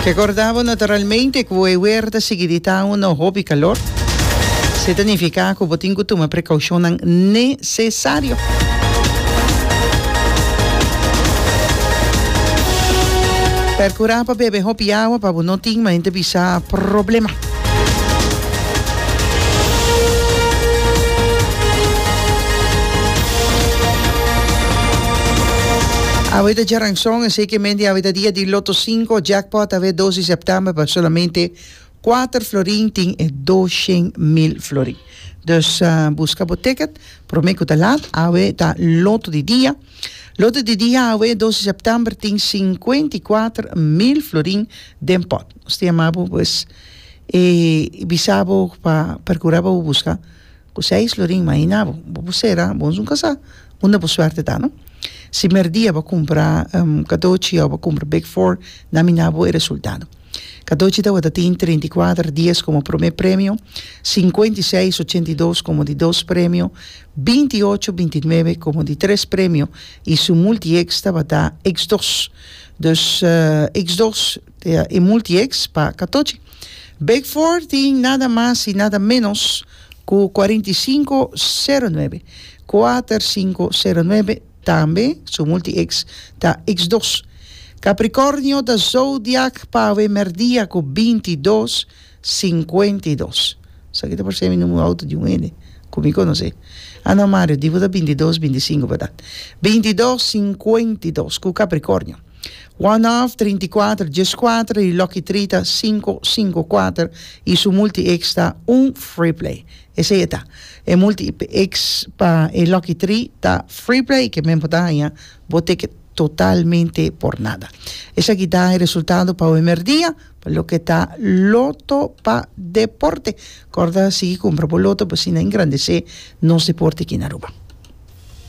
Ke ku orda bo naturalmente ku bo e weer ta sigui di ta unu hopi kalor, se ta nifiká ku bo tin ku tuma prekoushonnan nesesario. Perkurá pa bebe hopi awa pa bo no tin mente bisa problema. Awe ta dja ranson, esei ke mende awe ta dia di Lotto Cinco, Jackpot awe dos di September pa solamente kuater florin tin e dos shen mil florin. Dus buska bo ticket prome ku ta lat, awe ta Lotto di dia. Lote di dia awe e dos di september tin sinkuenta i kuater mil florin den pòt. Nos ta yama bo pues i bisa bo pa perkura pa bo buska ku seis florin mas i na bo. Bo por sera bo esun kasá unda bo suerte ta no. Si merdia bo a kumpra kadochi òf bo a kumpra big four na mina bo e resultado. Cadochi tabata tin treinta i kuater dies komo promé premio, sinkuenta i seis ochenta i dos komo di dos premio, binti i ocho binti i nuebe komo di tres premio i su multieks tabata eks dos. Dus eks dos ta e multieks pa Catochi. Big Four tin nada mas i nada ménos ku kuarenta i sinku sero nuebe, kuater sinku sero nuebe. Tambe su multi-eks ta eks dos. Kaprikornio ta zodiak pawe merdia ku binti dos, sinkuenta i dos. Esaki ta por ser mi numeru outo di un hende ku mi konosé. A no, Mario, di bo ta binti dos, binti sinku, berdat? Binti dos, sinkuenta i dos ku Kaprikornio. One half trinta i kuater djes kuater y Lucky Three ta sinku sinku kuater y su multi X ta un free play. Esey e ta. E multi X pa e Lucky Three ta free play ke men bo ta haña bo ticket totalmente por nada. Esaki ta e resultado pa awe merdia pa loke ta Loto pa Deporte. Corda sigui cumpra bo Loto pa asina engrandece nos deporte aki na Aruba.